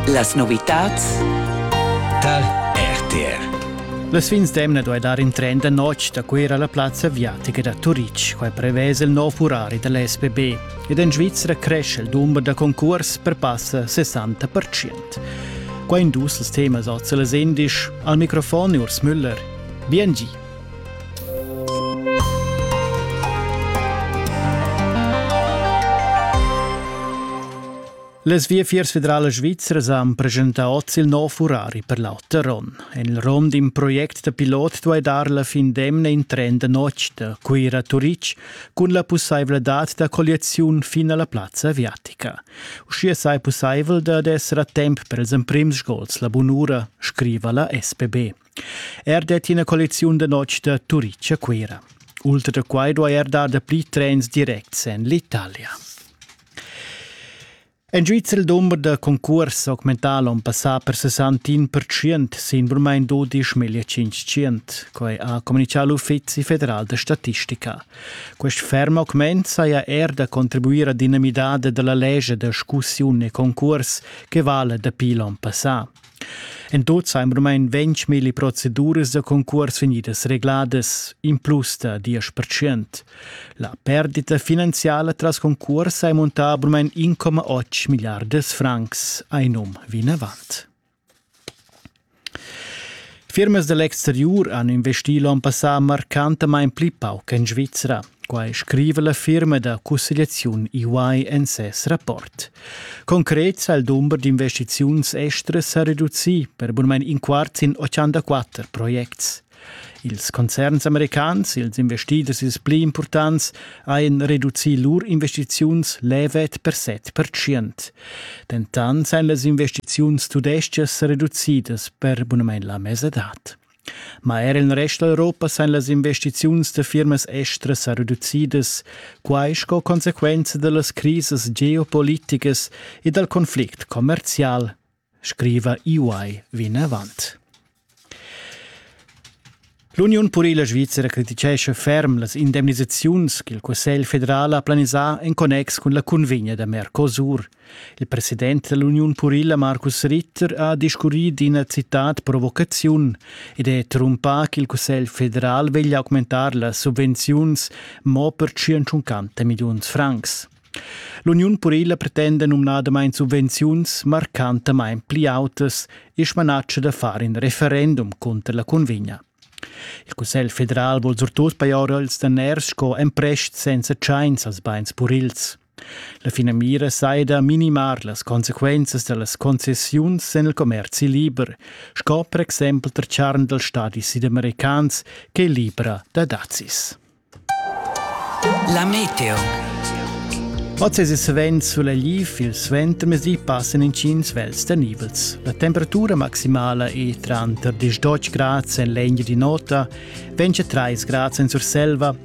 Las novitads dal RTR Las fins d'emna duai dar in tren da notg da Cuira alla plazza aviatica da Turitg. Quai prevesa il nov urari da l'SPB. Ed en Svizra cresce il dumber da concurs per passa 60%. Qua in dus temas oz las indisch. Al microfon Urs Müller. Bien gi. Las Viafiers federalas svizras han presentà oz il nov furari per l'auter onn. En il rom d'in project da pilot duai dar la fin d'emna in tren da notg da Cuira a Turitg cun la pussaivladad da colliaziun fin a la plazza aviatica. Uschia sai pussaivel dad esser a temp per ils emprims gols la bunura, scriva la SPB. Er det ina collecziun da notg da Turitg a Cuira. Ultra da quai duai er dar dapli trens directs en l'Italia. En Svizzera il dumber da concurs augmental on passà per 61% sin vormain 12.500. Quai ha communichà l'Uffizi federal da statistica. Quest ferm augment saja er da contribuir a dinamidade della legge da scussiun e concurs che vale dapi l'on passà. En tut sajan rumain ventg milli proceduras da concurs vegnidas regladas, in plus da diesch percent. La perdita finanziala tras concurs ha montà rumain 1,8 milliardas francs, ein um vinavant. Firmas dall'exteriur han investì l'onn passà marcantamain pli pauc en Svizra. Quai scriva la firma da cussegliaziun EY en ses rapport. Concret sa il dumber d'investiziuns estras sa reducì per bunmain in quart sin 84 projects. Ils concerns americans, ils investiders ils pli impurtants, hajan reducì lur investiziuns levet per 7 percent. Dentant sajan las investiziuns tudestgas reducidas per bunamain la mesadad. Ma er in rest d'Europa san las investiziuns da firmas estras sa reducidas, quai sco consequenza da las crisas geopoliticas e dal conflict commerzial, scriva EY vinavant. L'Uniun purila svizra criticescha ferm las indemnisaziuns ch'il Cussegl federal ha planisà en connex cun la cunvegna da Mercosur – Il president dell'Uniun purila Markus Ritter ha discurrì d'ina citad provocaziun ed è trumpà ch'il Cussegl federal veglia augmentar las subvenziuns mo per 150 milliuns francs. L'Uniun purila pretenda numnadamain subvenziuns marcantamain pli autas e smanatscha da far in referendum cunter la convegna. Il Cussegl federal vuol surtut pajar els daners sco emprest senza tschains als bains purils. La finamira sai da minimar las consequenzas da las concessiuns en il commerzi liber, sco per exempel tar charn dals stadis südamericans che è libra da dazis. La meteo. Oz è svent sulaiv, il suentermezdi passan intgins vels da nivels. La temperatura maximala è tranter 10 gradi en legna di nota, 23 gradi en Surselva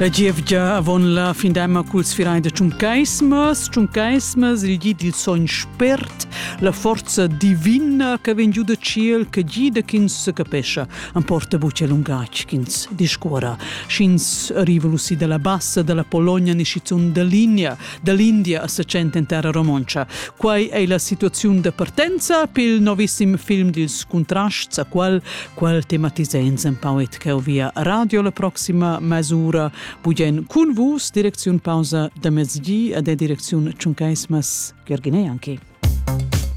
La gievgia avon la findemma culs firein da Tschuncaismas, Tschuncaismas, il gi dil sogn spert, la forza divina che vegn giu da ciel, che gida ch'ins secapescha, emporta buca lungatg ch'ins discuora. Sch'ins arriva lusi dalla bassa dalla Pologna ni schizun da Ligna, da l'India a sa tschent en terra romontscha. Quai è la situaziun da partenza pil novissim film dils Contrasts, a qual, qual tematiza empau et cheu via radio la proxima mesura, bugen cun vus, direcziun pausa da mezdi, ad e direcziun Tschuncaismas Gergine anche.